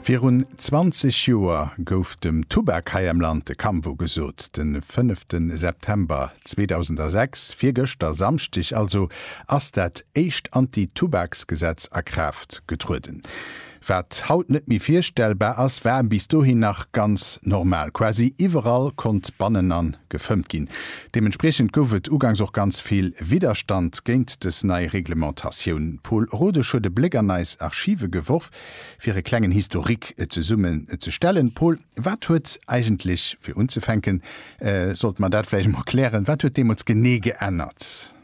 Virun 20 Joer gouf dem Tubak hei am Land de Kampf ugesot. De fënnefte September 2006, virgëschter, Samschdeg also, ass dat éischt Anti-Tubaks-Gesetz a Kraaft getrueden. Wat haut net méi virstellbar ass, war bis dohin nach ganz normal. Quasi iwwerall konnt bannen an gefëmmt ginn. Deementspriechend gouf et ugangs och ganz vill Widderstand géint des nei Reglementatioun. D'Paul Rodesch huet e Bléck an eis Archive geworf, fir e klengen Historique zesummen ze stellen. Paul, wat huet eigentlech, fir unzefänken sollte mer dat vläicht emol klären, wat huet deemools genee geännert?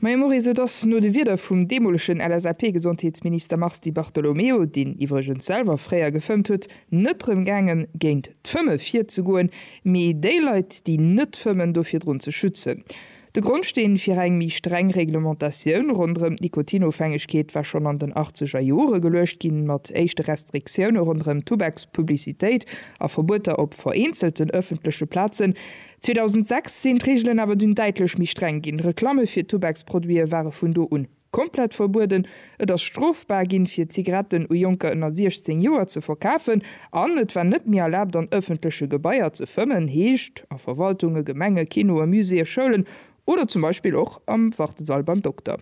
Maja Moris, Et ass no de Wierder vum deemolegen LSAP-Gesondheetsminister Mars Di Bartolomeo, deen iwwregens selwer fréier gefëmmt huet, net drëm gaangen, géint d'Fëmme virzegoen, mee déi Leit, déi net fëmmen, do virdrun ze schützen. De Grondsteen fir eng méi streng Reglementatioun ronderëm d'Nikotinofhängegkeet war schonn an den achtzeger Jore geluecht ginn, mat éischte Restriktioune ronderëm d'Tubakspublicitéit a Verbueter op vereenzelten ëffentleche Plazen. 2006 sinn d'Reegelen awer dunn däitlech méi streng ginn. Reklamme fir Tubaksproduite ware vun do un komplett verbueden, et ass strofbar ginn, fir Zigaretten u Jonker ënner 16 Joer ze verkafen an et war net méi erlaabt, an ëffentleche Gebaier ze fëmmen, heescht a Verwaltunge, Gemenge, Kinoe, Muséeë, Schoulen Oder zum Beispill och am Wartesall beim Dokter.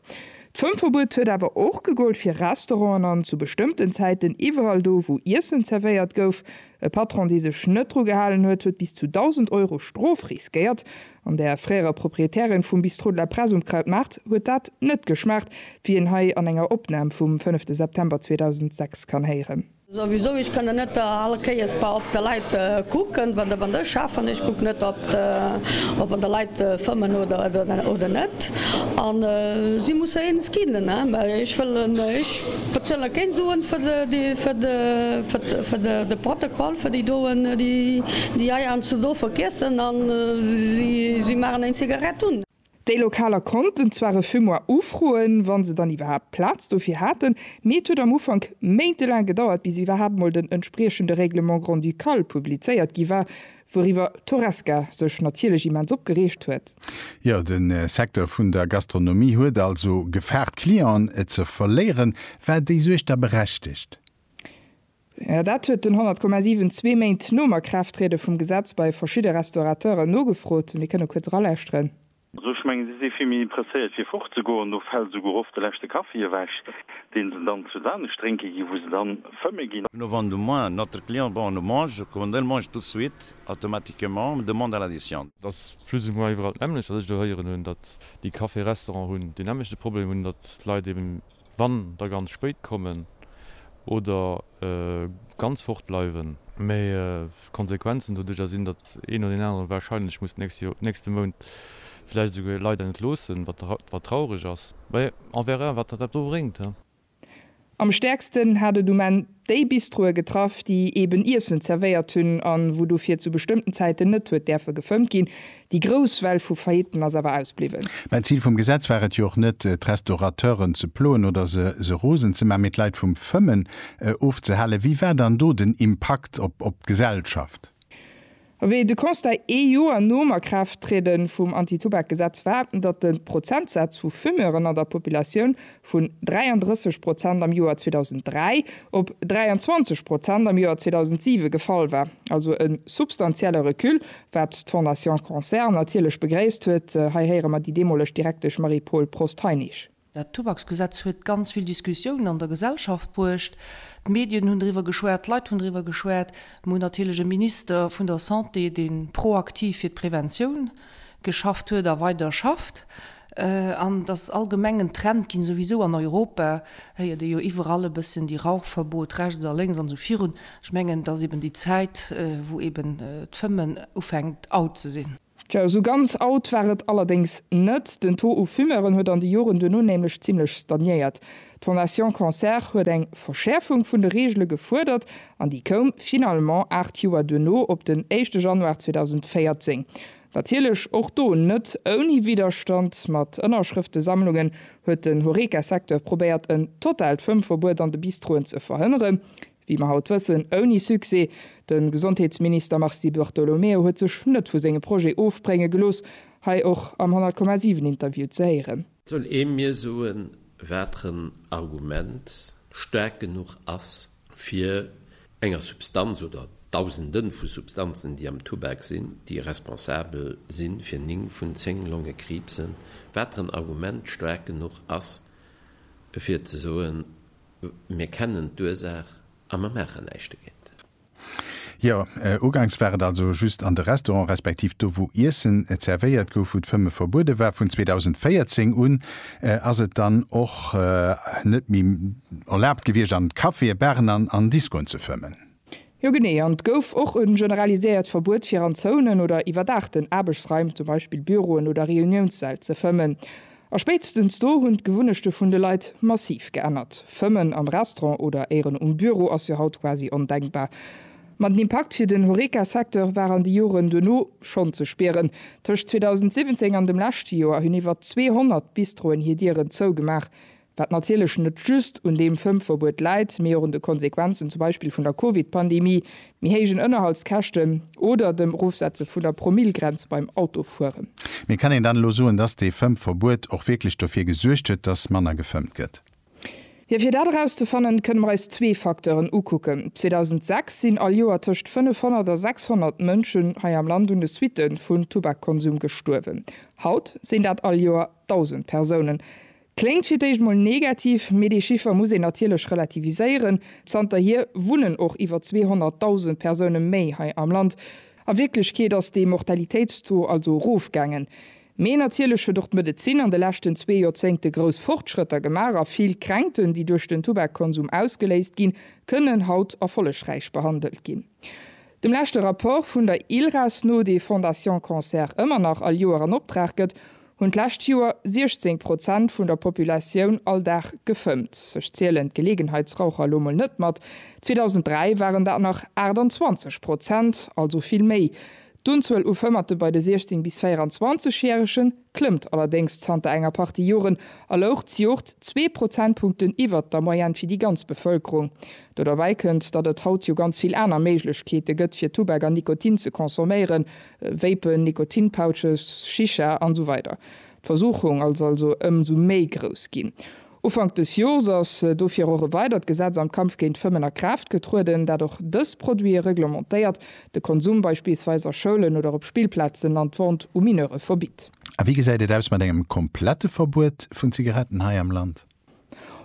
D'Fëmmverbuet huet awer och gegollt fir Restauranten an zu bestëmmten Zäiten iwwerall do, wou Iessen zerwéiert gouf. E Patron, dee sech net dru gehalen huet, huet bis zu 1.000 Euro Strof riskéiert. An der fréierer Proprietärin vum Bistrot de la Presse um Krautmaart huet dat net geschmaacht, wéi een hei an enger Opnam vum 5 September 2006 kann héieren. Souwisou, ech kënnen net all Kéiers bei op de Leit kucken, wann der, wann ech schafen, ech kucken net op de, op wann der Leit fëmmen oder, oder net. An si musse eens ginn, mä ech wëllen, ech bezuelen keng Suen fir de, déi, fir de, fir de, de Protokoll, fir déi doen, déi, déi hei eins do verkessen an si, si maachen eng Zigarett un. Déi Lokaler konnten zwar e Fumoir ufroen, wa se dann iwwerhaapt Plaz dofir haten, mee et huet am Ufank méintelaang gedauert, bis iwwerhaapt mol den entspriechende Règlement grand-ducal publizéiert gi war, wouriwwer d'Horesca sech natierlech immens opgereegt huet. Jo, de Secteur vun der Gastronomie huet also Gefahr, d'Clienten ze verléieren. War déi Suerg da berechtegt? Jo, dat huet den 100,7 zwee Méint nom Akraafttriede vum Gesetz bei verschidde Restaurateuren nogefrot. Mir kënne kuerz eralauschteren. Also ech mengen, si si vill méi presséiert fir fortzegoen. Do fält esouguer oft de leschte Kaffi ewech, dee se dann zu Saanesch drénke ginn, wou se dann fëmme ginn. No wann de moins notre client bon nous mange, kommen dëll mange tout de suite automatiquement une demande à l'addition. Et ass plus ou moins iwwerall d'nämmlecht, wat ech do héieren hunn, datt déi Café-Restaurant hunn deen nämmlechte Problem, hunn, datt d'Leit eben Wann der ganz spéit kommen oder ganz fort bleiwen. Mee d'Konsequenzen doduerjer sinn, datt een oder deen aneren warscheinlech muss d'nächste Mount vläicht esouguer e Leit entloossen, wat traureg ass. Mee on verra wat dat do bréngt. Am stäerksten hat et um Enn Déi Bistroe getraff, déi eben Iessen zerwéiert hunn an wou dofir zu bestëmmten Zäiten net huet däerfe gefëmmt ginn. Déi grouss Well vu Faillitten ass awer ausbliwwen. Mä d'Zil vum Gesetz war et jo och net, d'Restaurateuren ze ploen oder se se rosen ze maachen, mee d'Leit vum Fëmmen ofzehalen. Wéi war dann do den Impakt op d'Gesellschaft? Wéi de Constat ee Joer nom a Kraaft triede vum Antitubakgesetz war, datt de Prozentsaz vu Fumeuren an der Populatioun vun 33 Prozent am Joer 2003 op 23 Prozent am Joer 2007 gefall war, also e substantielle Recul, wat d'Fondation Cancer natierlech begréisst huet, hei héiere mer déi deemoleg Direktesch Marie-Paule Prost-Heinisch. Dat Tubaksgesetz huet ganz vill Diskussiounen an der Gesellschaft bruecht. D'Medien hunn driwwer geschwat, d'Leit hunn driwwer geschwat. Mir hunn natierlech e Minister vun der Santé, dee proaktiv fir d'Preventioun geschafft huet a weider schafft. An et ass allgemeng en Trend ginn, souwisou an Europa héiert ee jo iwwerall e bëssen déi Rauchverbot rechts a lénks an esou virun. Ech mengen, et ass eben déi Zäit, wou eben d'Fëmmen ufänkt out ze sinn. Tjo, esou ganz out war et allerdéngs net. Den Taux u Fumeuren huet an de Joren duerno nämlech zimmlech stagnéiert. D'Fondation Cancer huet eng Verschäerfung vun de Reegele gefuerdert an déi koum finalement aacht Joer duerno op den éischte Januar 2014. Natierlech och do net ouni Widderstand. Mat Ënnerschrëftesammlungen huet den Horeca-Secteur probéiert en totaalt Fëmmverbuet an de Bistroen ze verhënneren. Wéi mer haut wëssen, ouni Succès. De Gesondheetsminister Mars Di Bartolomeo huet sech net vu senge Projet ofbrénge gelooss, hei och am 100,7 Interview ze héieren. Soll ee mir soen, wateren Argument staark genuch ass, fir enger Substanz oder Dausende vu Substanzen, déi am Tubak sinn, déi responsabel si fir 9 vun 10 Longekriibsen, wateren Argument staark genuch ass, fir ze soen, Mir kennen d'Ursaach a mer maachen näischt dogéint. Jo, uganks war et also just an de Restaurant, respektiv do wou Iessen zervéiert gouf, wou d'Fëmme verbuede war. Vun 2014 un ass et dann och net méi erlaabt gewiescht an Caféë, Baren an Diskoen ze fëmmen. Jo genee, an et gouf och e generaliséiert Verbuet fir an Zounen oder iwwerdaachten Aarbechtsraim, zum Beispill Büroen oder Reuniounssäll, ze fëmmen. A spéitstens do hunn d'Gewunnechte vun de Leit massiv geännert. Fëmmen am Restaurant oder éieren um Büro ass jo haut quasi ondenkbar. Ma den Impakt fir den Horeca-Secteur war an de Joren duerno schonn ze spieren. Tëscht 2017 an dem leschte Joer hunn iwwer 200 Bistroen hir Dieren zougemaach. wat natierlech net just un deem Fëmmverbuet läit, mee och un de Konsequenzen zum Beispill vun der Covid-Pandemie, méi héijen Ënnerhaltskäschten oder dem Erofsetze vun der Promillgrenz beim Autofueren. Mee kann een dann elo soen, dass dee Fëmmverbuet och wierklech dofir gesuergt huet, dass manner gefëmmt gëtt? Jo, fir dat erauszefannen, kënne mer eis zwee Facteuren ukucken. 2006 sinn all Joer tëscht 500 a 600 Mënschen hei am Land un de Suitte vun Tubakkonsum gestuerwen. Haut sinn dat all Joer 1.000 Persounen. Kléngt fir d'éischt mol negativ, mee dee Chiffer muss een natierlech relativiséieren. Zanterhier wunnen och iwwer 200.000 Persoune méi hei am Land. A Wierklechkeet ass dee Mortalitéitstaux also erofgaangen. Mee natierlech huet och d'Medezin an de leschten zwee Joerzéngte grouss Fortschrëtter gemaach a vill Kränkten, déi duerch den Tubakkonsum ausgeléist ginn, kënnen haut erfollegräich behandelt ginn. Dem leschte Rapport vun der ILRAS no, dee Fondation Cancer ëmmer nach all Joer an Optrag gëtt, Hunn d'lescht Joer 16 Prozent vun der Populatioun all Dag gefëmmt. Ech zielen d'Geleegenheitsraucher elo mol net mat. 2003 waren dat nach 28 Prozent, also vill méi. D'Unzuel u Fëmmerte bei de 16 bis 24 Järege klëmmt allerdéngs zanter enger Partie Joren a louch d'Joert zwee Prozentpunkten iwwert der Moyenne fir déi ganz Bevëlkerung. Do derbäi kënnt, datt et haut jo ganz vill aner Méiglechkeete gëtt fir Tubak an Nikotin ze consomméieren, Vapen, Nikotinpouches, Shisha an esou weider D'Versuchung ass also ëmsou méi grouss ginn. Ufank dës Jors ass dofir och e weidert Gesetz am Kampf géint d'Fëmmen a Kraaft getrueden, dat och dës Produite reglementéiert, de Konsum beispillsweis a Schoulen oder op Spillplazen an d'Vente u Mineure verbitt. A wéi gesäit et aus mat engem komplette Verbuet vun Zigaretten hei am Land?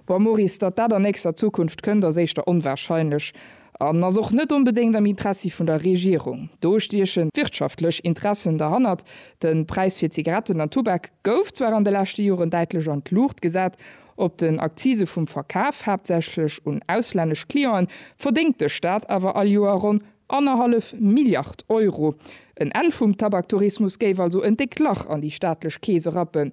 Bon, Maurice, datt dat an nächster Zukunft kënnt, ass éischter onwahrscheinlech an ass och net onbedéngt am Interessi vun der Regierung. Do stiechen d'wirtschaftlech Interessen derhannert. De Präis fir Zigaretten an Tubak gouf zwar an de leschte Joren däitlech an d'Luucht gesat. Op den Akzise vum Verkaf, haaptsächlech un auslännesch Clienten, verdéngt de Staat awer all Joer ronn annerhallef Milliard Euro. En Enn vum Tabaktourismus géif also en déckt Lach an déi staatlech Kees erappen.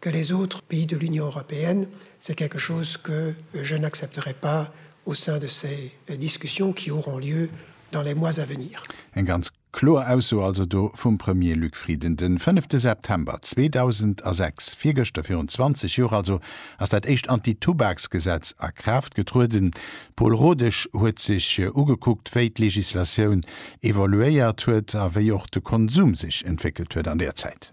que les autres pays de l'Union européenne, c'est quelque chose que je n'accepterai pas au sein de ces discussions qui auront lieu dans les mois à venir. Eng ganz kloer Ausso also do vum Premier Luc Frieden de fënnefte September 2006, virgëschter virun 20 Joer also, ass dat éischt Anti-Tubaksgesetz a Kraaft getrueden. Pol Rodesch huet sech ugekuckt, wéi d'Legislatioun evoluéiert huet a wéi och de Konsum sech entwéckelt huet an där Zäit.